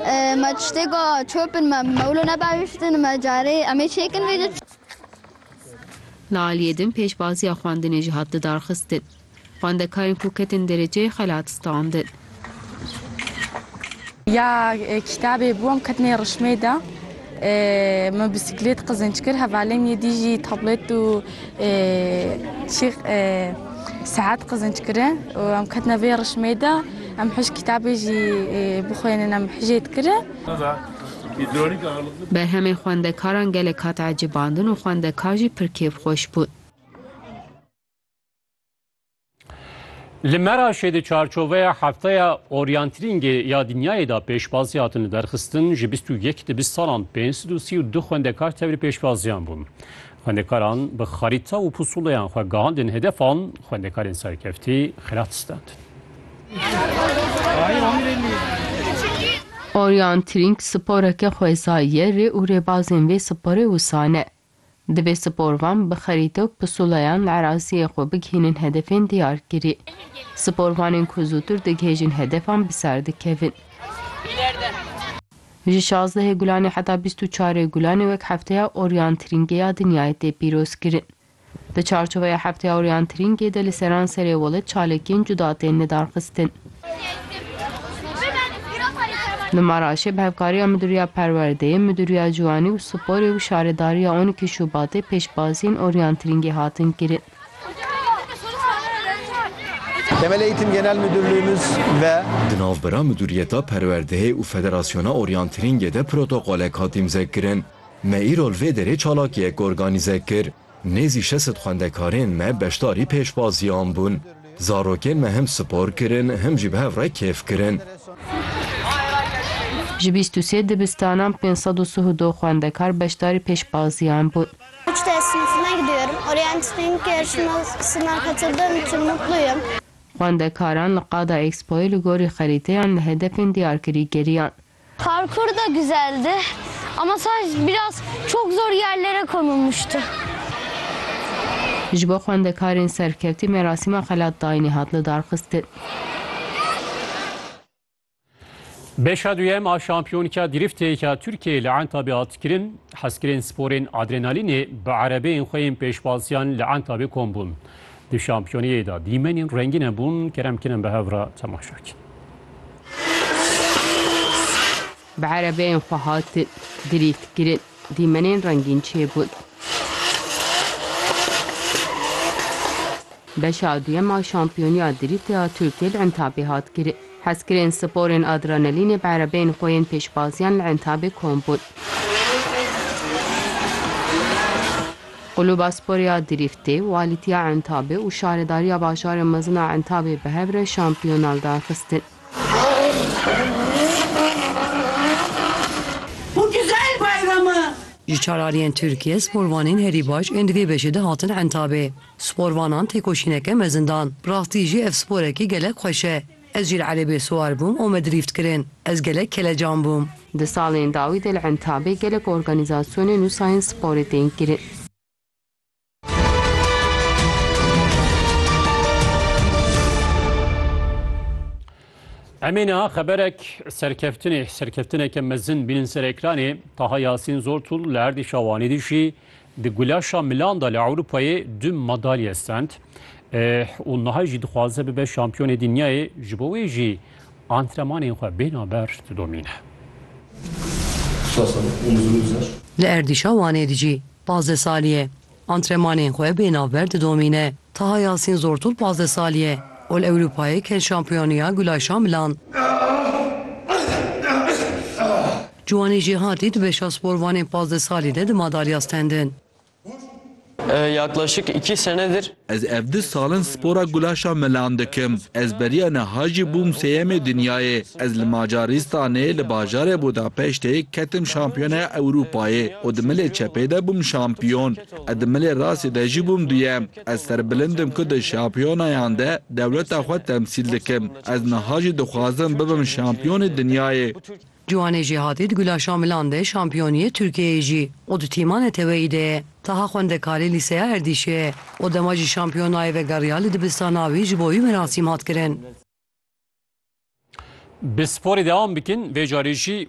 Me tiştêka çopin me bi mewlo nebahiştin me carê em ê çêkin vê de. Li aliyê din pêşbaziya xwendinê jî hat lidarxistin. Xwendekarên ku ketin dereceyê xelat standin. Ya kitabê bûm ketine rişmê de. Me bîsîklêt qizînc kir, hevalên yê dî jî tablêt û çî seat qizînc kirin û em ketine vê rişmê de. Em hişk kitabê jî bixwênin, em hijê dikirin. Berhemên xwendekaran gelek hat ecêbandin û xwendekar jî pir kêfxweş bûn. Li Meraşê di çarçoveya hefteya oryantirîngê ya dinyayê da pêşbazî hatin li derxistin ji bîst û yek di bîst salan pênc sed û sî û du xwendekar tevlî pêşbaziyan bûn. Xwendekaran bi xarîta û pusûleyan xwe gahandin hedefan, xwendekarên serkeftî xilat standin. Oryantirîng sporeke xwezayî ye, rê û rêbazên vê sporê wisa ne. Divê sporvan bi xerîte û pusulayan li eraziyê xwe bigihînin hedefên diyarkirî. Sporvanên ku zûtir digihêjin hedefan bi ser dikevin. Ji şazdehê Gulanê heta bîst û çarê Gulanê wek Hefteya Oryantirîngê ya Dinyayê tê pîrozkirin. Di çarçoveya Hefteya Oryantirîngê de li seranserê welêt çalakiyên cuda tên lidarxistin. Li Maraşê bi hevkariya Midûriya Perwerdeyê, Midûriya Ciwanî û Sporê û Şaredariya on îkî Şubatê pêşbaziyên oryantirîngê hatin kirin. Temel Eğitim Genel Müdürlüğümüz ve Di navbera Midûriyeta Perwerdeyê û Federasyona Oryantirîngê de protokolek hat îmzekirin. Me îro li vê derê çalakiyek organîze kir. Nêzî şesit xwendekarên me beşdarî pêşbaziyan bûn. Zarokên me him spor kirin him jî bi hev re kêf kirin. Ji bîst û sê dibistanan pênc sed û sih û du xwendekar beşdarî pêşbaziyan bûn. Xwendekaran li Qada Expoyê li gorî xerîteyan li hedefên diyarkirî geriyan. Parkur da güzeldi ama sadece biraz çok zor yerlere konulmuştu. Ji bo xwendekarên serkevtî merasîma xelat dayînê hat lidarxistin. Beşa duyem a şampiyonka dîrîftê ya Tirkiyeyê li Entabê hat kirin. Hezkirên sporên adrenalînê bi erebeyên xwe yên pêşbaziyan li Entabê kom bûn. Di şampiyoniyê de dîmenên rengîne bûn, kerem kirin bi hev re temaşe bikin. Bi erebeyên xwe hatin dirîdkirin, dîmenên rengîn çêbûn. Beşa duyem a şampiyoniya dirîtê ya Tirkiyê li Entabê hat kirin. Hezkirên sporên adrenalînê bi erebeyên xwe yên pêşbaziyan li Entabê kom bûn. Quluba Sporê ya Dirîftê, Walîtiya Entabê û Şaredariya Bajarê Mezin a Entabê bi hev re şampiyona li dar xistin. Ji çalariyên Tirkiyê sporvanên herî baş ên di vê beşê de hatin Entabê. Sporvanan têkoşîneke mezin dan. Bi rastî jî ev sporekî gelek xweş e. Ez jî li erebê siwar bûm û me drîft kirin. Ez gelek kelecan bûm. Di salên dawî de li Entabê gelek organîzasyonên û sayên sporê tên kirin. Emê niha xeberek serkeftinê, serkeftineke mezin bînin ser ekranê, Taha Yasîn Zortûl li erdî Şawanî dijî Di gulaşa milan de li Ewropayê du madalye stend û niha jî dixwaze bibe şampiyonê dinyayê, ji bo wê jî antrenmanên xwe bêhna ber didomîne. Li erdîşa Wanê de jî pazdeh salî ye antrenmanên xwe bêhna ber didomîne. Taha Yasîn Zortûl pazdeh salî ye û li Ewropayê ket şampiyoniya gulaşa milan. Ciwanî jî hatî di beşa sporvanên pazdeh salî de di madalya stendin. Yaklaşık iki senedir. Ez ev du sal in spora gulaşa melan dikim. Ez beriya niha jî bûm sêyemê dinyayê. Ez li Macaristanê li bajarê Budapeştê ketim şampiyonaya Ewrûpayê û di milê çepê de bûm şampiyon. E di milê rastê de jî bûm duyem. Ez serbilind im ku di şampiyonayan de dewleta xwe temsîl dikim. Ez niha jî dixwazim bibim şampiyonê dinyayê. Ciwanê Jêhatî di Gulaşa Milan de şampiyoniyê Tirkiyeyê jî û di tîma neteweyî de ye. Taha xwendekarê lîseya Erdîşê ye û dema jî şampiyon nayê vegeriya li dibistana wî ji bo wî merasîm hat kirin. Bi sporê dewam bikin vê carê jî.